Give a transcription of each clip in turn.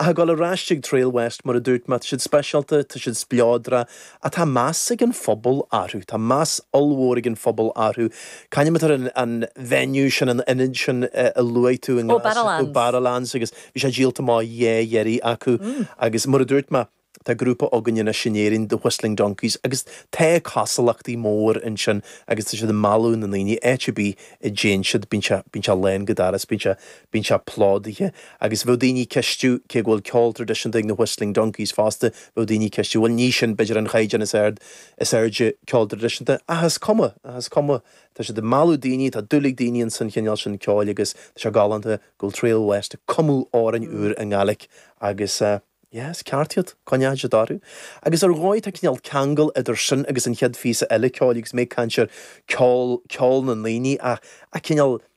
Ach ag dul ar ais chuig Trailwest, mar a dúirt mé, tá siad speisialta, tá siad spleodra, ach tá meas ag an phobal orthu, tá meas ollmhór ag an phobal orthu. Cá hainm atá ar an venue sin, an ionad sin a luaigh tú i nGlas, ó Barrowlands, agus bhí sé díolta amach dhá dheireadh acu. Agus mar a dúirt mé, tá grúpa againn anois in Éirinn, The Whistling Donkeys, agus tá cosúlachtaí mór ansin agus tá siad ag mealladh na ndaoine, áit ar bith a dtéann siad, bíonn sé bíonn sé lán go doras, bíonn sé Bíonn sé plódaithe agus bheadh daoine ag ceistiú, cé go bhfuil ceol tradisiúnta ag na Whistling Donkeys fosta, bheadh daoine ag ceistiú, bhuel ní sin b'fhéidir an chaighdeán is ard, is airde ceol tradisiúnta ach is cuma, ach is cuma, tá siad ag mealladh daoine, tá dúil ag daoine in san chineál sin ceoil agus tá sé galánta go bhfuil Trail West ag cumadh amhráin úr i nGaelic agus yeah is ceart iad, coinneoidh siad orthu. Agus ar dhóigh tá cineál ceangal idir sin agus an chéad phíosa eile ceoil agus mé ag caint ar cheol, ceol na ndaoine ach, ach cineál,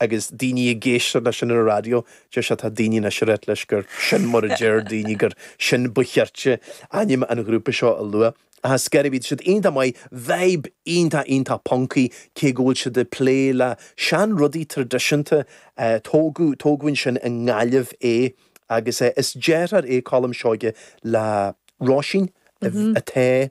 agus daoine ag éisteacht leis an raidió, deir siad, tá daoine anois Nazareth leis gur sin mar a deir daoine, gur sin ba chirte ainm an ghrúpa seo a lua. Ach is go raibh siad iontach maith, veib iontach iontach puncaí, cé go bhfuil siad ag plé le seanrudaí tradisiúnta, tógadh, tógadh Oisín i nGaillimh é agus is deartháir é Colm Seoige le Róisín, a, a,